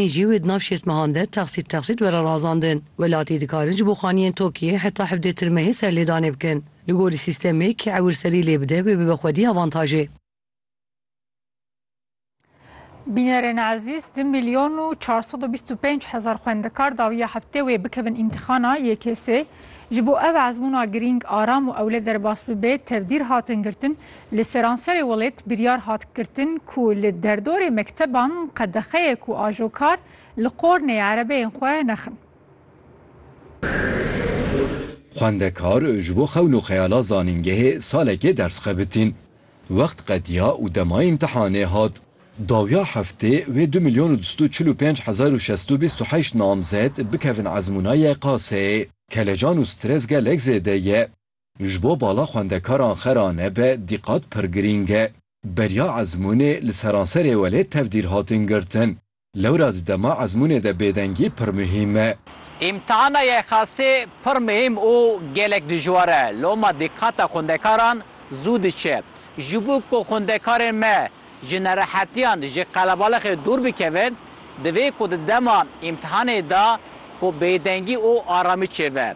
Ê jî wê di nav şêst mehan de texsît texsît were razandin. Welatî dikarin ji bo xaniyên TOKİ'yê heta hevdê tirmehê serlêdanê bikin. Li gorî sîstemê kê ewil serî lê bide wê bibe xwedî avantajê. Bînerên ezîz, du milyon û çar sed û bîst û pênc hezar xwendekar dawiya heftê wê bikevin îmtîxana YKS'ê. Ji bo ev ezmûna girîng, aram û ewle derbas bibe, tevdîr hatin girtin, Li seranserê welêt biryar hat girtin ku li derdorê mekteban qedexeyek û ajokar li qornê erebeyên xwe nexin. Xwendekar ji bo xewn û xeyala zanîngehê salekê ders xebitîn. Wext qediya û dema îmtihanê hat. Dawiya heftê wê du milyon û du sed û çil û pênc hezar û şesto bîst û heşt namzet bikevin ezmûna YKS'ê. Kelecan û stres gelek zêde ye. Ji bo bala xwendekaran xera nebe dîqat pir girîng e. Beriya ezmûnê li seranserê welêt tevdîr hatin girtin. Lewra di dema ezmûnê de bêdengî pir muhîm e. Îmtihana YKS'ê pir muhîm û gelek dijwar e. Loma dîqata xwendekaran zû diçe. Ji bo ku xwendekarên me ji nerehetiyan, ji qelebalixê dûr bikevin, divê ku di dema îmtihanê de ku bêdengî û aramî çêbe.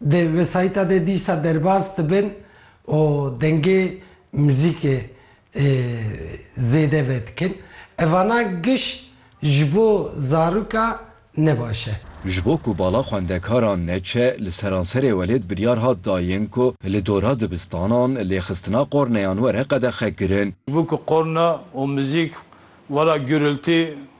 Di wesayîta de dîsa derbas dibin û dengê muzîkê zêde vedikin. Evana giş ji bo zaroka ne baş e. Ji bo ku bala xwendekaran neçe, li seranserê welêt biryar hat dayin ku li dora dibistanan lêxistina qorneyan were qedexekirin. Ji bo ku qorne û muzîk were gurultî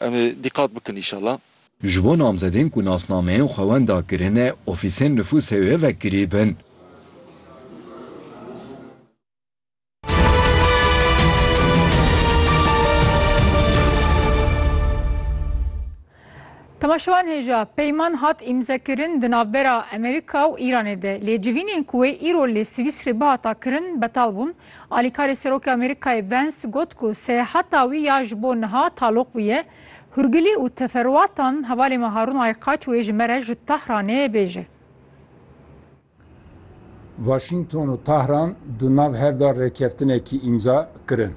Em ê dîqat bikin înşallah. Ji bo namzedên ku nasnameyên xwe wenda kirine ofîsên nifûsê wê vekirîbin. Temaşevan hêja, peyman hat îmzekirin di navbera Amerîka û Îranê de, lê civînên ku wê îro li Swîsrê bihata kirin betal bûn. Alîkarê Serokê Amerîkayê Vance got ku seyahata wî ya ji bo niha taloq bûye, Hûrgilî û teferûatan hevalê me Harûn Aykaç wê ji me re ji Tehranê bêje. Waşîngton û Tehran di nav hev de rêkeftinekî îmza kirin.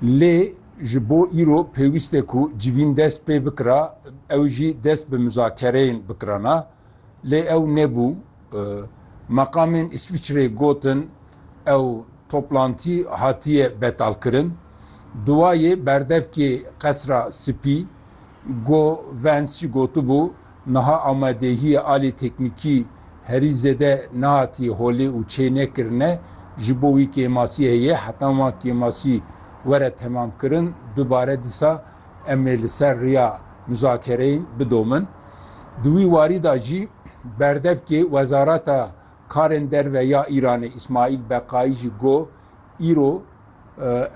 Lê ji bo îro pêwîst e ku civîn dest pê bikira, ew jî dest bi muzakereyên bikirana. Lê ew nebû. Meqamên Îswîçreyê gotin ew toplantî hatiye betalkirin. Duwayê berdevkê Qesra Spî, Go Vance gotibû, niha amadehiyê alî teknîkî herî zêde nehatiye holê û çênekirine, ji bo wî kêmasî heye, heta wan kêmasî were temamkirin dubare dîsa Em ê li ser riya muzakereyên bidomin. Di wî warî de jî berdevkê Wezareta Karên Derve ya Îranê Îsmaîl Beqayî jî got, Îro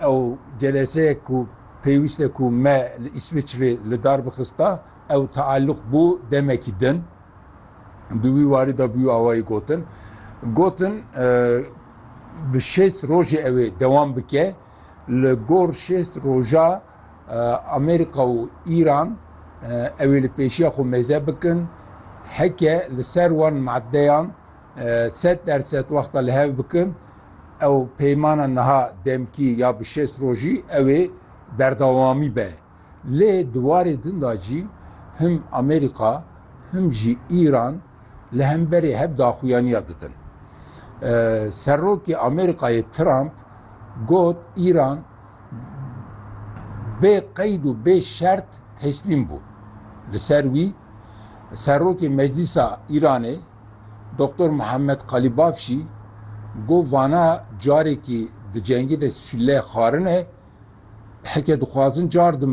ew celeseyek ku pêwîst e ku me li Îsviçrê li dar bixista ew teelûq bû demekî din. Di wî warî de bûye awayî gotin. Gotin bi şêst rojê ew ê dewam bike. Li gor şêst roja Amerîka û Îran ew ê li pêşiya xwe mêze bikin, heke li ser wan madeyan sed der sed wexta li hev bikin, ew peymana niha demkî ya bi şêst rojî ew ê berdewamî be. Lê di warê din de jî him Amerîka him jî Îran li hemberê hev daxuyaniya didin. Serokê Amerîkayê Trump got Îran bê qeyd û bê şert teslîm bû. Li ser wî Serokê Meclîsa Îranê Doktor Muhammed Qalîbaf jî got vana carekî di cengê de sûleyê xwarin e, heke dixwazin car din